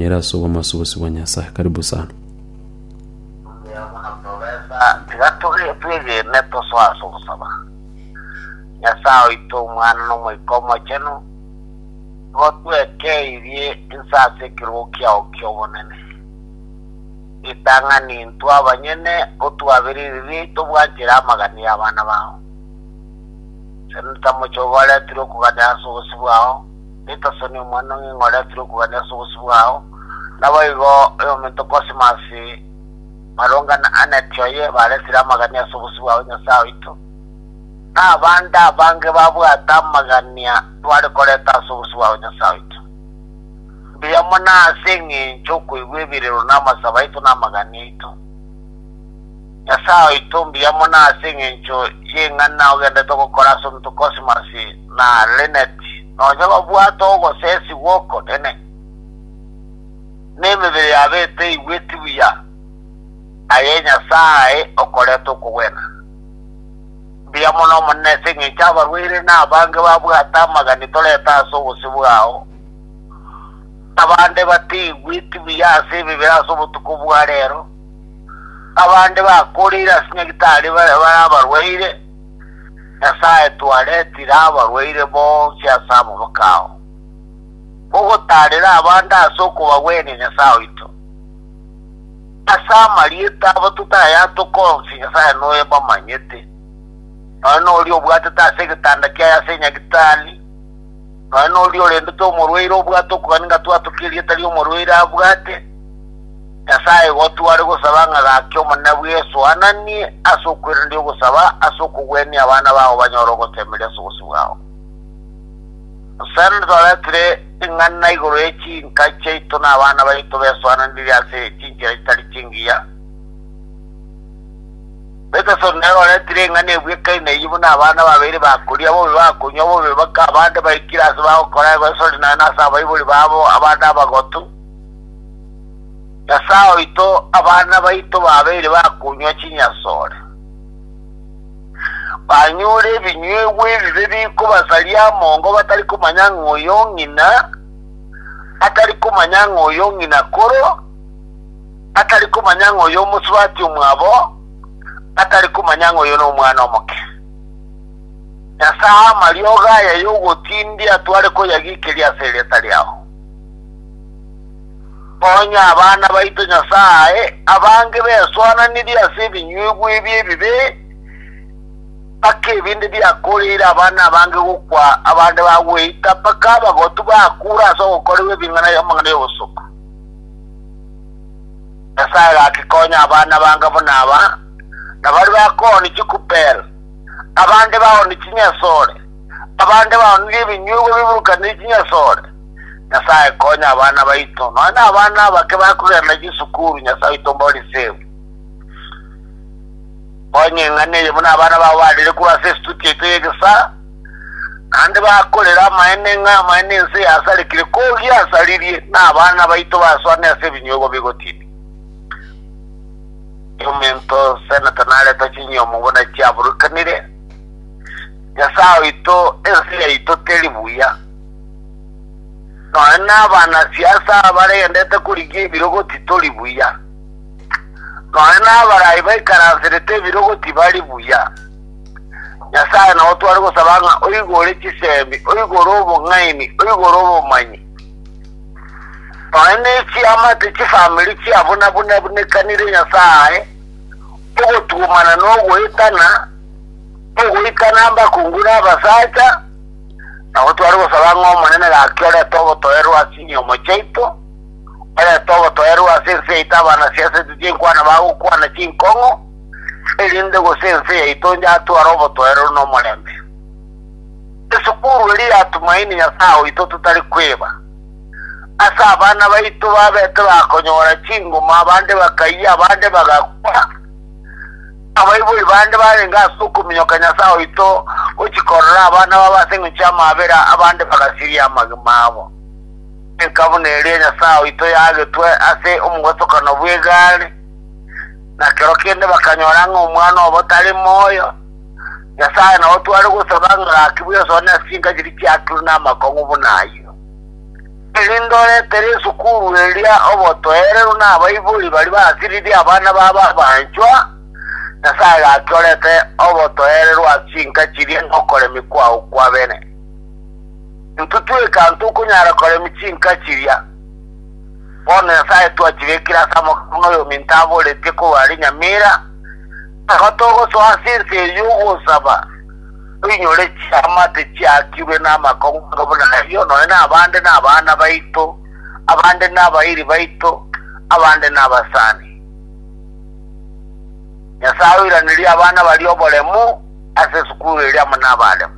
Nere ase obomasubusi bwa Nyasae. Karibu sana. Tiga twegene tosoe ase ogosaba. Nyasae oito, Omwana, na Omoika Omochenu, nigo twekeirie inse ase ekerogo kiao ki'obonene. Ritang'ani intwe abanyene otwabere ebibe biaito bwanchera amagani y'abana bao. Senta mochie ogoretere okuganera ase obosio bwao, Petersoni, omwana o ng'ina oria tirokogania ase obosio bwao. Naboigo oyominto Kosimasi, Maronga na Aneti oye baresire amagania ase obosio bwao Nyasae oito, na abande abange babwate amagania tware koreta ase obosio bwao Nyasae oito. Mbuya mono ase engencho y'okoigwa ebirero na amasabo aito na amagania aito. Nyasae oito mbuya mono ase engencho y'eng'ana ogendete gokora ase omonto Cosmas na Lynette, nonye babwate ogosesi gw'okonene, na emebere yabo eteigweti buya, aye Nyasae okorete okogwena. Mbuya mono Omonene ase engencho abarwaire na abange babwate amagani torete ase obosio bwao, na abande bateigweti buya ase emebere ase obotuko bwa rero, Abande bakoorire ase nyagitari bare bare abarwaire, Nyasae twaretire abarwaire bonsi ase amaboko ao. Mogotaarere abande ase okobagwenia Nyasae oito. Ase amarieta abo totayatoka onsi Nyasae noye bamanyete. Nonya noria obwatete ase egetanda kiaye ase enyagitari, Nonya noria orendete omorwaire obwate okogania ng'a twatokia erieta ri'omorwaire abwate, Nyasae igo tware gosaba ng'a gaki Omonene bwe Yeso aananie ase okweranderia ogosaba ase okogwenia abana bao banyore ogoteemeria ase obosio bwao. Nosanane twaretire ing'ana igoro ye chinka chiaito na abana baito besoananirie ase chinchera chitari chingiya. Peterson nere oretire eng'ana ebwekaine eyio buna abana babere bakoria bobe, bakonywa bobe, baka abande baikire ase bagokora egwesori naende ase abaibori babo abande abagotu. Nyasae oito, abana baito babeire bakonywa chinyasore, banyure ebinyuegwa ebibe bikobasaria amongo batari komanya ng'a oyo ong'ina, atari komanya ng'a oyo ong'ina koro, atari komanya ng'a oyo omosubati omwabo atari komanya ng'a oyo nomwana omoke. Nyasae amariogo aya yogotindia atware koyagikeria ase erieta riao. Onye abana baito Nyasae abange besoananirie ase ebinyuigwa ebi ebibe, mpaka ebinde biakoreire abana abange gokwa abande bagweita, mpaka abagotu bakure ase ogokorerwa ebing'ana y'amang'ana y'obosuku. Nyasae gakikonya abana bange buna aba, na baria bakooni chikupel, abande baoni chinyasore, abande baonire ebinyuigwa biburukanire chinyasore. Nyasae konya abana baito, nonya na abana abake bakogerana chisukuru, Nyasae oito mbori save. Konya eng'ana eye buna abana bao barire korwa ase estudio yaito y'egesaa, Naende bakorera amaene ng'a amaene ense yasarekire kogia asaririe, na abana baito baswane ase ebinyogo bigotiini. Chiomento Seneta nareta chinyomo buna chiaburukanire, Nyasae oito ense yaito teri buya. Nonye nabana siasa baregendete korigia ebirogoti tori buya. Nonye nabaraai baikaransirete ebirogoti bari buya. Nyasae nao tware gosaba ng'a oigore chisemi, oigore obong'aini, oigore obomanyi, nonya ne chiamate chifamiri chia buna buna bunekanire Nyasae, ogotuomana na ogoetana, ogoikana abakungu na abasacha, nabo tware gosaba ng'a Omonene gaki orete ogotoerwa ase enyomo chiaito, orete ogotoerwa ase ense yaito abanasia ase ebibe enkwana bagokwana chinkong'u, erinde gose ense yaito yatware obotoereru na omorembe. Esukuru eria ya Tumaini Nyasae oito totari kweba. Ase abana baito babete bakonyora chinguma, abande bakayia, abande bagakwa. Abaibori bande barenge ase okominyoka Nyasae oito gochia korora abana babo ase engencho y'amaabera, abande bagasiria amagima abo. Enka buna eria Nyasae oito yagetwe ase omogwetokano bw'egari. Na kero kende bakanyora ng'a omwana obo tari moyo. Nyasae nao tware gosaba ng'a gakigwe ensoa na esinka chiria chiaturwe namakong'u buna ayio. Erinde oretere esukuru eria obotoereru na abaibori baria basiririe abana babo abanchwa, Nyasae gaki orete obotoereru ase chinka chiria na okoremia kwao kwabene. Intwe tweka ntokonyara koremia chinka chiria. Bono Nyasae twachigekire ase amagoro buna oyominto aboretie korwa are nyamera, nabo togosoa ase ense eye y'ogosaba, toinyore chiamate chiakirwe namakong'wanso buna ayio, nonye nabande nabana baito, abande nabairi baito, abande nabasani. Nyasae oiranirie abana baria oboremu ase esukuru eria amo nabaremu.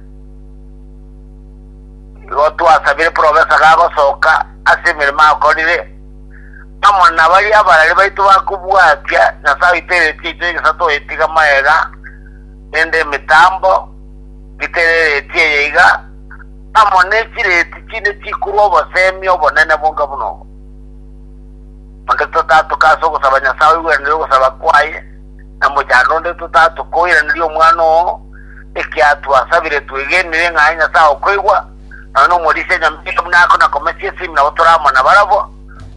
Igo twasabire profesa gagosoka ase emeremo akorire, amo na baria abarari baito ba kobwatia Nyasae oito eretio yaito y'egesato oyetiga magega nende emitambo ngitere ereti eye iga, amo ne chireti chinde chikorwa obosemi obonene bonga buna obo. Onde totatoka ase ogosaba Nyasae oigweranire ogosaba kwaye, na mochando onde totatoka oiranerie omwana oo, ekiagera twasabire twegenire ng'a aye Nyasae okoigwa, nonya nomorisia nyameke buna ake na komesia esimi nabo tore amo nabarabwo,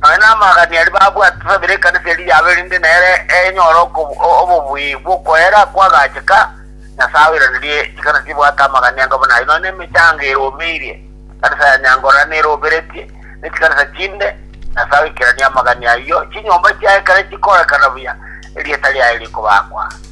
nonya namagania aria babwate tosabire ekanisa eria yabo erinde nere enyore okobu- o- obobuya bw'okoera kwagacheka, Nyasae oiranerie chikanisa chibwate amagania anga buna ayio, nonya nemechango eromeirie, ekanisa ya Nyangora neroberetie, ne chikanisa chinde, Nyasae oikeranie amagania ayio, chinyomba chiaye kare chikorekana buya, erieta riaye rikobakwa.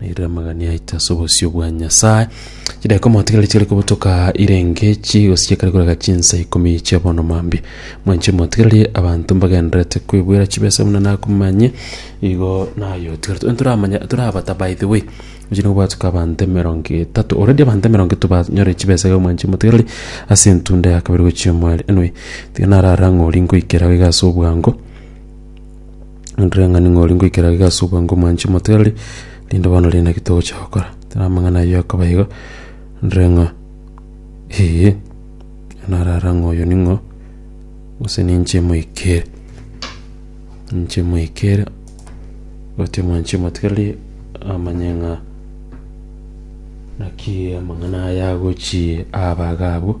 Nairire amagani aito ase obosio bwa Nyasae. Chidai komotigereri chigari kobotoka irenge chi gosichekari korega chinsa ikomi chia bono mambi. Mwanche motigereri abanto mbagenderete kwebwera chibesa buna nakomanye igo nayo tigerete. Onye toramanya torabata by the way. Mchine obwatoka abanto emerongo etato. Already abanto emerongo etato banyore chibesa iga mwanche motigereri ase entunda ya kabere gochia omware. Anyway, tiga narara ng'ori nkoikera iga ase obwango. Nandire ng'a ning'o ori ngoikera iga ase obwango omoanche motere, rinde bono rinde naki togocha gokora. Tera amang'ana ayio akaba igo, nandire ng'a ee, narara ng'a oyo ning'o, gose ninche moikere. Ninche moikere, gotebi omoanchia omotigarie amanye ng'a naki amang'ana aya agochia aba iga abwo.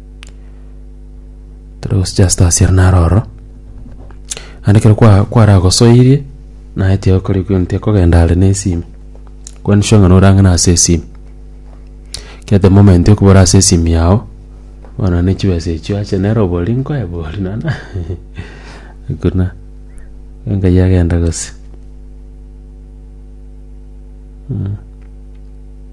Tore gosucha ase toss ere naro ororo, naende ekero kwa- kwaragosoirie naye tiyakori gento tiyakogenda are na esimi, kwani sure ng'a norang'ana ase esimi. Ekiagera the moment okobora ase esimi yago, bono ne chibesa echio acha nere obori nkoe bori nana hakuna, enkai agenda gose mm.